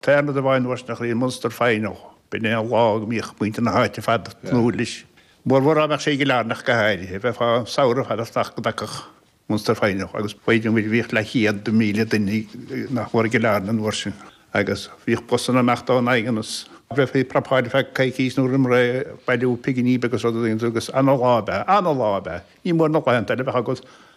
Tharla do bhean Mhuirtneach Rí Munster Final b'in é an lá go mbíodh muintir na háite ar fad ag tnúth leis, mórmhór dá mbeadh sé i gCill Airne go háirithe, bheifeá samhradh fada asteach go dtagfadh Munster Final, agus b'fhéidir muid, bhíodh leathchéad míle duine nach mór i gCill Airne an uair sin agus bhíodh busanna amach ón nDaingean, is bheifí ag prapáil ar feadh coicís nó roimh ré ag bailiú pinginí agus rudaí agus ana-lá ab ea, ana-lá ab ea, ní mór na laethanta eile a bheith agat.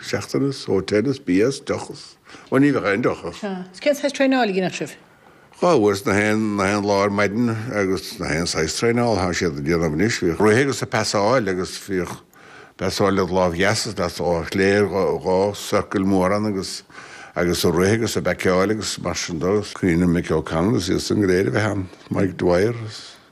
seachtaine, só, teannas, BS, dochas, ó ní bheadh aon dochar. Sea, 's cén saghas traenáil a dhéanfadh sibh? Dhá uair nach aon, nach aon lá ar maidin agus nach aon saghas traenála atá siad a' déanamh anois, bhíodh rith agus a' pasáil agus bhíodh pasáil led' láimh dheas is led' láimh chlé ar dhá, dhá circle mór ann agus, agus a' rith agus a' baiceáil agus mar sin de, 's cuimhin liom Mick O'Connell is iad san go léir a bheith ann, Mick Dwyer is.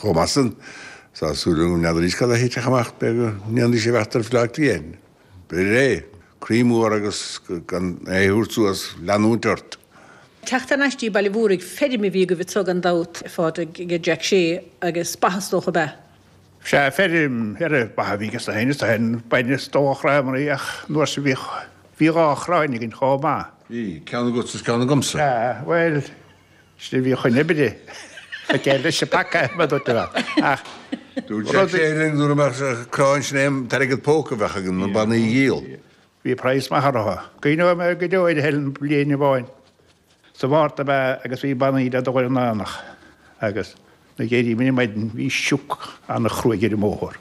Chomh maith san, sa súile na n'fheadaraís cad a thitfeadh amach b'é go ndéanfaidís sé a bheith tar fleá cliath, biré, croí mór agus gan é a thabhairt suas, leanúint ort. Teacht thar n-ais dtí Baile an Mhúraigh, feirm a bhí agaibh thuaidh gan dabht ar fad ag Jack Shea agus ba is dócha ab ea? Sea, feirm ar a bath a bhí aige féin, is dóigh an bain is dó a chraith amarí ach an uair sin bhí dhá chráin againn chomh maith. Bhí, ceann agat is ceann agamsa. Sea, bhuel, Sin a bhíodh in oibre ag Eile Sepaca, mar a dúirt mé. Ach Dúirt sé rud linn gurb as an gcráin sin an t-airgead póca a bheadh againn, na bannaí a dhíol. Bhí praghas maith orthu. Cuimhneoidh mé go deo ar Helen bliain amháin. Sa Mhárta ab ea agus bhí bannaí le dul ar an aonach agus nuair a d'éirigh mé ar maidin bhí sioc an-chruaidh ar an mbóthar.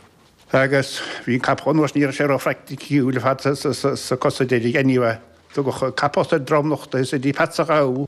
Agus bhí an capall anuas, ní raibh sé róphraicticiúil ar fad sna cosa deiridh. Anyway, tugadh capall sa dromlach de is go dtí Peats an Ghabha.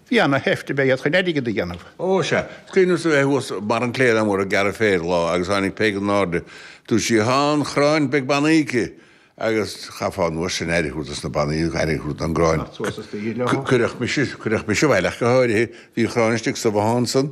Bhí ana sheift ag Peig chun airgead a dhéanamh. Ó, sea. 'S cuimhin liom a bheith thuas i mbarr an cléire mhóir ag gearradh féir lá agus tháinig Peig in airde. Dúirt sí, Thá an chráin, beidh banaí aici agus chaithfeá an uair sin aire thabhairt dos na banaí agus aire thabhairt don gcráin. Cuireadh mise abhaile ach go háirithe. Bhí an chráin istigh sa bhothán san.